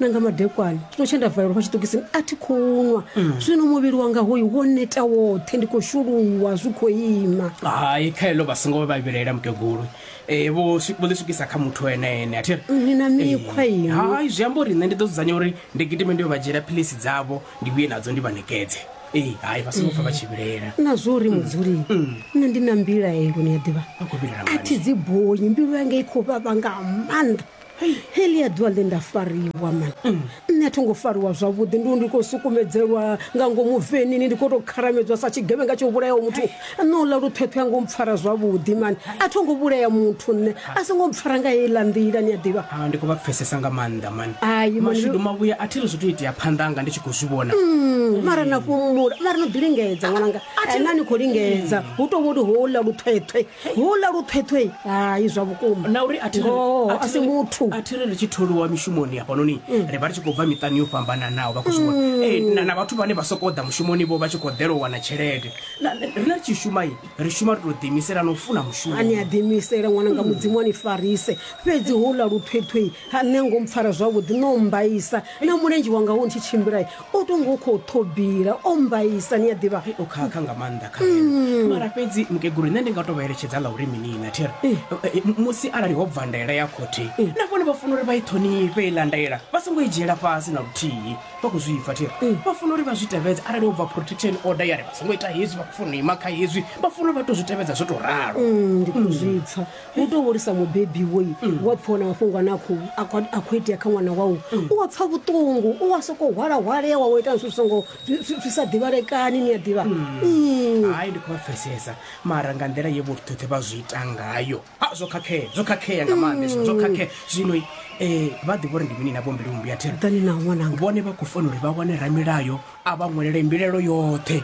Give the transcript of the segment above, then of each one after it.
na nga madekwana no tshe nda valelwa fha tshiṱokisini a thi khou nwa zwino muvhili wanga hoyu wo neta woṱhe ndi khou shuluwa zwi khou ima hai kha heḽo vha songo vha vhilaela mukegulu Eh, vho swi- vho ḽi swikisa kha muthu ene ene a thi ri ni na mikhwa Eh, inwi hai zwi amba uri nṋe ndi ḓo dzudzanya uri ndi gidime ndi yo vha dzhiela philisi dzavho ndi vhuye nadzo ndi vha nekedze ee hai vha songo pfa vha tshi vhilaela na zwo uri mudzuli nṋe ndi na mbilaelo ni a ḓivha a khou vhilaela a thi dzi bonyi mbilu yanga i khou vhavha nga maanḓa helia ḓuvha ḽe nda fariwa man mm. nṋe a tho ngo fariwa zwavhuḓi ndi ndi khou sukumedzelwa nga ngomu venini ndi khou tou kharamedzwa sa tshigevhenga tsho vhulayaho muthu nṋe uḽa luṱhweṱhwe a ngo mpfara zwavhuḓi man a tho ngo vhulaya muthu nṋe a so ngo mpfara nga heiḽa nḓila ni a ḓivha ah, ndi khou vha pfesesa nga maanḓa man mashudu mavhuya a thi ri zwi to itea phanḓa anga ndi tshi khou zwi vhona mm, mara na fhumula mara no ḓi lingedza ṅwananga na ni khou lingedza hu tou vholi houḽa luṱhweṱhwe Houḽa luṱhweṱhwe, hai zwa vhukuma. Na uri a thi ri Ngoho, a a thi si ri- muthu. a thi ri ri tshi tholiwa mishumoni hafhanoni ri vha ri tshi khou bva miṱani yo fhambananaho vha khou zwi vhona Eh, na- na vhathu vhane vha sokou ḓa mushumoni vho vha tshi khou ḓela u wana tshelede Na- na- riṋe ri tshi shuma i ri shuma ri tou ḓiimisela na u funa mushumo ani a ḓiimisele ṅwana nga mudzimu a ni farise fhedzi houḽa luṱhweṱhwe ha nṋe ngo mpfara zwavhuḓi no mmbaisa na mulenzhe wanga wo ntshi tshimbila o to ngo khou ṱhobila o mbaisa ni a ḓivha Ai, o khakha nga maanḓa kha nṋe. mara fhedzi mukegulu nṋe ndi nga to vha eletshedza ḽa uri mini na thiri Eh. Eh, m- musi arali ho bva ndaela ya khothe na vhone vha funa uri vha i ṱhonifhe iḽa ndaela vha songo i dzhiela fhasi na luthihi vha khou zwi pfa thiri vha funa uri vha zwi tevhedze arali ho bva protection order ya ri vha songo ita hezwi vha khou funa u ima kha hezwi vha funa uri vha to zwi tevhedza zwo to ralo Mm, ndi khou zwi pfa u tou hulisa mubebi woi wa pfha ona mafhungo ane a khou a khou- a khou itea kha ṅwana wau u wa pfha vhuṱungu u wa sokou hwalahwalewa wa ita zwithu zwi songo zwi- zwi zwi sa ḓivhalekani ni a ḓivha Mm. hai ndi khou vha pfesesa mara nga nḓila ye vhothuṱhe vha zwi ita ngayo a zwo khakhea zwo khakhea nga maanḓa hezwo, zwo khakhea zwino um vha ḓivha uri ndi mini na vhombili vhumbi a thero ḓani na ṅwananga vhone vha khou fanela uri vha wane ramilayo a vha ṅwelele mbilaelo yoṱhe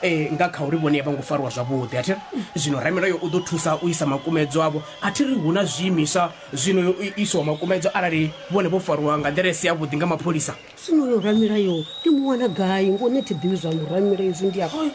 um nga kha uri vhone a vho ngo fariwa zwavhuḓi a thi ri zwino ramilayo u ḓo thusa u isa makumedzo avho a thi ri hu na zwiimiswa zwino yo isiwa makumedzo arali vhone vho fariwa nga nḓila i si yavhuḓi nga mapholisa zwino yo ramilayo ndi mu wana gai ngo ni thi ḓivhi zwa muramilayo izwi ndi a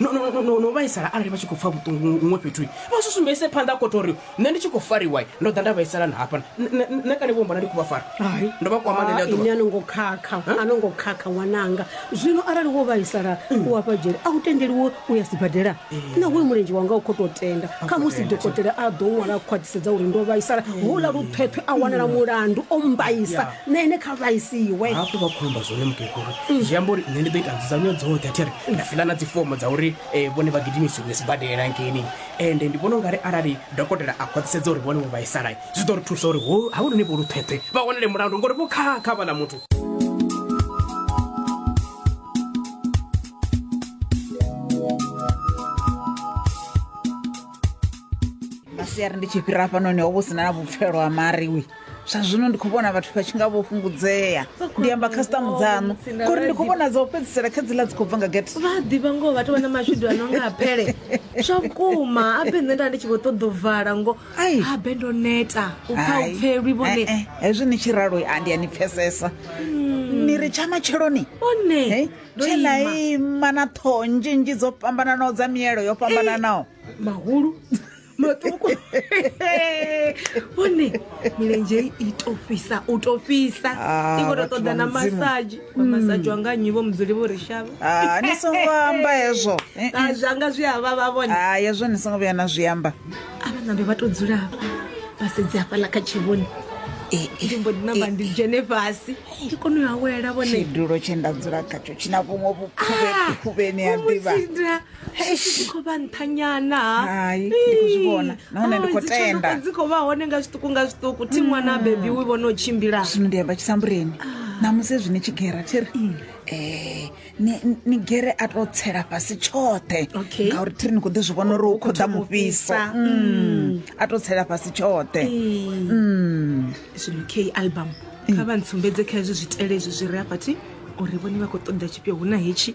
no, no, no, no, no vhaisala arali vha tshi khou pfa vhuṱungu huṅwe fhethu vha zwi sumbedzise phanḓa khothe uri nṋe ndi tshi khou fariwa ndo ḓa nda vhaisala na hafha nṋe kale vho mbona ndi khou vha fara Hai. ndo vha kwama nṋe ndi a ini ḓuvha a no ngo khakha a no ngo khakha ṅwananga zwino arali wo vhaisala u hafha dzhele a u tendeliwe u ya sibadela naho uyu mulenzhe wanga u khou tou tenda kha musi tenda, dokotela a ḓo ṅwala a khwaṱhisedza uri ndo vhaisala houḽa luṱhweṱhwe a wanala mulandu o mbaisa na ene kha vhaisiwe hafhu vha khomba zwone mukegulu zwi amba uri nṋe ndi ḓo ita nzudzanyo dzoṱhe athi ri nda fila na dzifomo dza uri eh, vhone vha gidimisiwe sibadela ngeni ende ndi vhona u nga ri arali dokotela a khwaṱhisedza uri vhone vho vhaisala zwi ḓo ri thusa uri ho havhunoni vho luṱhweṱhwe vha wanele mulandu ngori vho khakha vhala muthu masiari ndi tshi fhira hafhanoni ho vho sina na vhupfelo ha mariwi zwa zwino ndi khou vhona vhathu vha tshi nga vho fhungudzea ndi amba khasitamu dzaṋu ngori ndi khou vhona dza u fhedzisela kha dziḽa dzi khou bva nga gete vha a ḓivha ngoho vhathu vha na mashudu a no nga a pele zwa vhukuma abe nṋe nda ndi tshi vho ṱoḓa u vala ngo Ai. abe ndo neta u pfa u pfelwi vhone Eh, eh, hezwi ni tshi ralo a ndi a ni pfesesa ni ri tsha matsheloni one Hey, ndo tshena ima ima na ṱhoho nzhinzhi dzo fhambananaho dza mielo yo fhambananaho mahulu maṱuku vhone milenzhe i to fhisa u to fhisa Ah, i khou to vhathu ṱoḓa vha na Mudzimu. Hmm. masaji wa masaji wanga nnyi vho mudzuli vho ri shavha Ah, ni songo amba hezwo Eh, eh. Ah, zwanga zwi avha vha vhone Ah, hezwo ni songo vhuya na zwi amba avha nambe vha to dzula hafha vha sedze hafhaḽa kha tshivhoni Eh, eh, ndi mbo ḓi namba ndi dzhene fhasi ndi kone u awela vhone tshidulo tshe nda dzula khatsho tshina vhuṅwe vhukhuvhe khuvheni ya ḓivha Ah, Vho mu tsinda. Eish. khou vha nṱhanyana Hai, ndi khou zwi vhona. Nahone ndi khou tenda. dzi khou vha hone nga zwiṱuku nga zwiṱuku thi ṅwana a bebi wi vhona u tshimbila zwino ndi amba tshisambureni namusi zwine tshi gera thi ri um ni ni gere a to tsela fhasi tshoṱhe Okay. ngauri thi ri ni khou ḓi zwi vhona uri u khou ḓa thoma u mufhiso fhisa. Mm. a to tsela fhasi tshoṱhe Mm. zwino k album kha vha ntsumbedze kha hezwi zwitele hezwi zwi re afhathi uri vhone vha khou ṱoḓa tshifhio hu na hetshi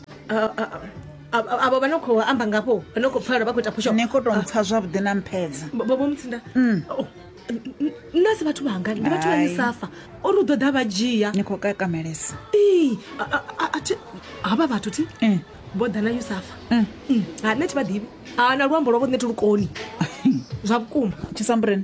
avo vha no khou amba ngafho vha no khou pfala vha khou ita phusho ni khou tou mpfa zwavhuḓi na mphedza bobo mutsinda Oh, n- n- nna si vhathu vhanga ndi vhathu vha Hai. misafa ori u ḓo ḓa vha dzhia ni khou kakamelesa Ii, a- a- a- a thi- havha vhathu thi Mm. vho ḓa na yusafa Mm. Mm, ha nṋe thi vha ḓivhi ha na luambo lwavho nṋe thi lukoni zwa vhukuma tshisambuleni